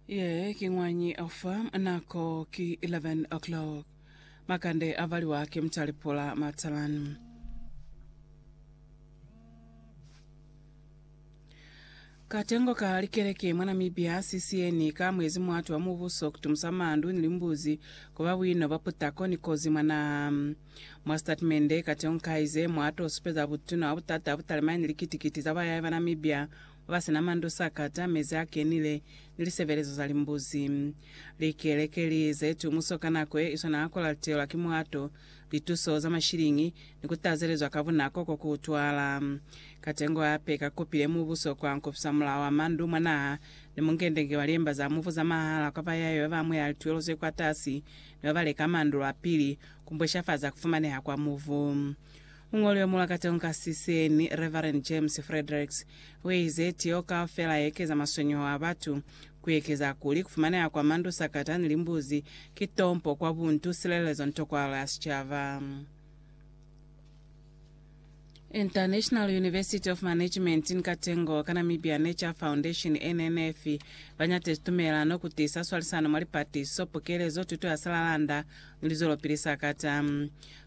Ye ki ñwañi ofa nako ki 11 o'clock. Makande a valiwa ki mutali pula matalani. Katengo ka likeleke mwa Namibia CCN ka mwezi muatu wa mubuso kutumusa mandu ni limbuzi kuba buino bwa putako ni kozi mwa naha. Mwa sitatimende, katengo kaize mwato supeza butuna bwa butata butali maine likiti-kiti za bayai ba Namibia Ba sina mandu sakata, mezi a kenile, ni lisebelezo za limbuzi. Likeleke li ze tumuso ka nako ye iswana ha ku lateelwa ki mulato, lituso za mashiliñi, ni ku tazelezwa ka bunako ko ku utwala. Katengo hape ka kopile mubuso kwa nkofisa mulao wa mandu mwa naha ni mungendenge wa liemba za mufu za mahala kwa ba yayo ba ba amuhela lituelo ze kwatasi ni ba ba leka mandu lwa pili, ku mbweshafaza ku fumaneha kwa mufu. Muñoli wa mulakatong ka Siseni, Reverend James Fredericks, uize, Tiyo kaufela yeekeza maswenyeho a batu, kuekeza kuli kufumaneha kwa mandu, sakata, ni limbuzi, ki tompo kwa buntu, silelezo ni tokwahalo ya sicaba. International University of Management ni Katengo ka Namibia Nature Foundation, NNF, banyatezi tumelano kutiisa swalisano mwa lipatiso, pukelezo, tuto ya silalanda ni lizwelopili sakata.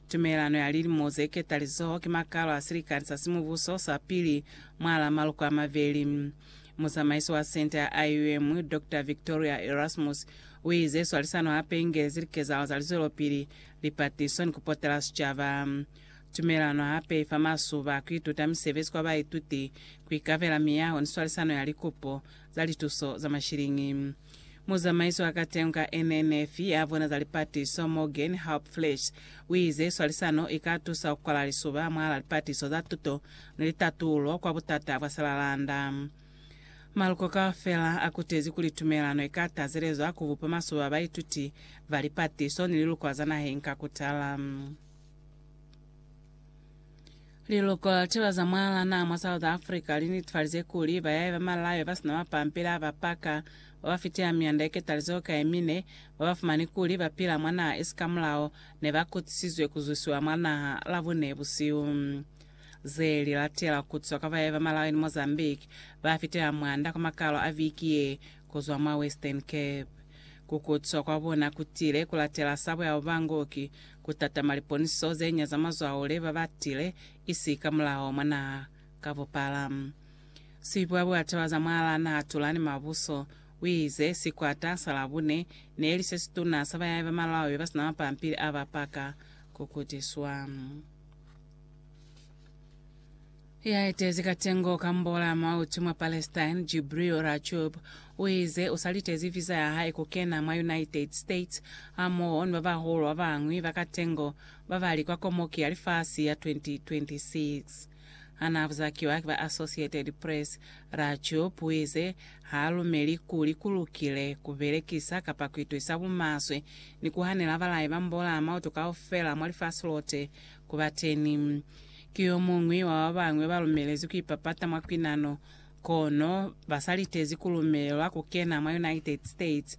Tumelelano ya Lilimo ze Ketalizoho ki makalo a silikani sa simubuso sa pili mwalaa maluko a mabeli. Muzamaisi wa senta ya IUM, Doctor Victoria Erasmus, uize swalisano hape ingelezi likezahalo za lizwelopili, lipatiso, ni kupotela sicaba. Tumelelano hape ifa masuba a kuituta misebezi kwa baituti, kuikabela miyaho ni swalisano ya likupo za lituso za mashiliñi. Muzamaiso wa katengo ka NNF ya bona za lipatiso, Morgen Hauptfleisch, uize swalisano ika tusa kukwala lisuba mwahala lipatiso za tuto ni litatulo kwa butata bwa silalanda. Maluko kaufela akutezi kuli tumelano ika tazelezwa kubupa masuba a baituti ba lipatiso ni liluko za naheng ka kutala. Liluko la Lituba za Mwalana mwa South Africa li netifalize kuli bayahi ba malayo ba si na mapampila a ba paka, ba ba fitela mianda ye ketalizeho ka ye mine, ba ba fumani kuli ba pila mwa naha isi ka mulao, ne ba kutisizwe ku zwisiwa mwa naha Labune busihu. Ze li latela ku kutiswa kwa bayahi ba malayo ni Mozambique ba fitela mwanda kwa makalo a viki ye ku zwa mwa Western Cape. Ku kutiswa kwa bona ku tile ku latela sabo ya Ubangoki, Ku tatama liponiso ze nya za mazwao le ba ba tile isi ka mulao mwa naha ka bupala. Sibwa bwa taba za mwalaa naha Tulani Mabuso u ize, Sikwata sa Labune ne li se situna sa bayahi ba Malawi ba si na mapampili a ba paka ku kutiswa. Ya etezi katengo ka mbola mwa utu mwa Palestine, Jibril Rajoub, uize usalitezi visa ya hae kukena mwa United States hamoho ni babahulu babañwi ba katengo babali kwa Komoki ya Lifasi ya 2026. Hanaabuzakiwa ki ba Associated Press, Rajoub uize haalumeli kuli kulukile kubelekisa kapa kuituisa bumaswe ni kuhanela balai ba mbola mwa utu kaufela mwa lifasi lote kubateni. Ki yomuñwi wa babañwi balumelezwi kuipapata mwa kwinano, kono basalitezi kulumelwa kukena mwa United States